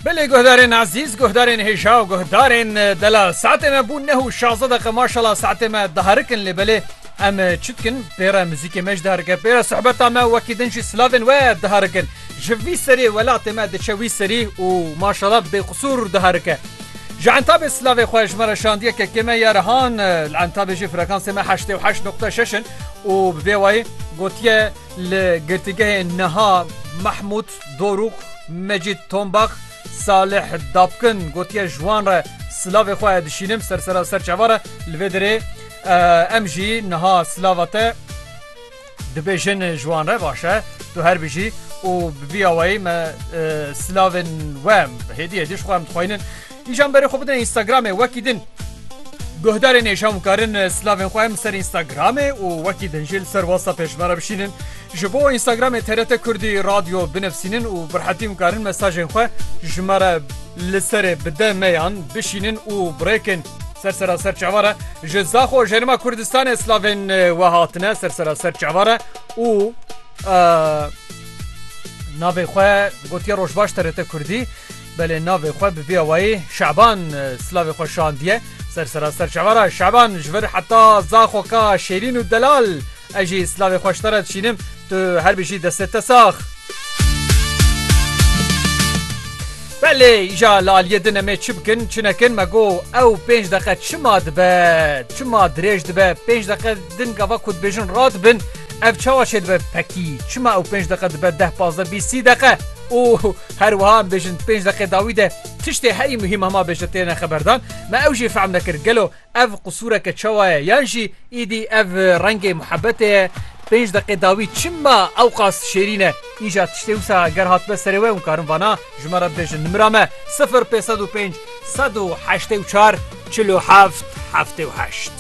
Belê guhdarên ezîz guhdarên hêja û guhdarên dela saetê me bû neh û şaze deqe maşala saetê me diherikin lê belê em çi dikin pêre muzîkê me jî diherike pêre sohbeta me wekî din jî silavên we diherikin ji vî serê welatê me diçe wî serî û maşala bêqisûr diherike. Ji entabê silavê xwe ji me re şandiye kekê me ya rihan li entabê jî frekansê me heştê û heşt noqte şeş in û bi vê wayî gotiye Li girtîgehê niha Mehmûd Dorûx, Mecîd Tombax, Salih Dabkin gotiye ji wan re silavê xwe dişînim ser sera serçava re li vê derê em jî niha silava te dibêjin ji wan re baş e tu her bijî û bi vî awayî me silavên we hêdî hêdî ji xwe em dixwînin. Kîjan berê xwe bidin Instagramê wekî din. Guhdarên êşan bikarin slavên xwe em ser Instagramê û wekî din jî li ser WhatsAppê ji me re bişînin. Ji bo Instagramê TRT Kurdî Radyo binivîsînin û bi rehetî bikarin mesajên xwe ji me re li serê bi DM yan bişînin û birêkin. Ser sera ser çavare ji Zaxo Jerima Kurdistanê slavên we hatine ser sera ser çavare û navê xwe gotiye Rojbaş TRT Kurdî. Belê navê xwe bi vî awayî Şaban silavê xwe şandiye ser seraser çava re, Şaban ji vir heta zaxo ka Şêrîn û Delal ez jî silavê xwe ji te re dişînim, tu her bijî destê te sax. Belê îja li aliyê din em ê çi bikin çi nekin me got ew pênc deqe çima dibe çima dirêj dibe pênc deqe din gava ku dibêjin radibin ev çawa çêdibe pekî çima ew pênc deqe dibe deh pazdeh bîst sî deqe û Her wiha em bêjin di pênc deqê dawî de tiştê herî muhîm hema bêjin têne xeberdan. Me ew jî fehm nekir gelo ev qisûreke çawa ye yan jî îdî ev rengê muhebetê ye. Pênc deqê dawî çima ewqas şêrîn e? Îja tiştê wisa ger hatbe serê we hûn karin vana ji me re bibêjin. Nimira me sifir pênc sed û pênc sed û heştê û çar çil û heft heftê û heşt.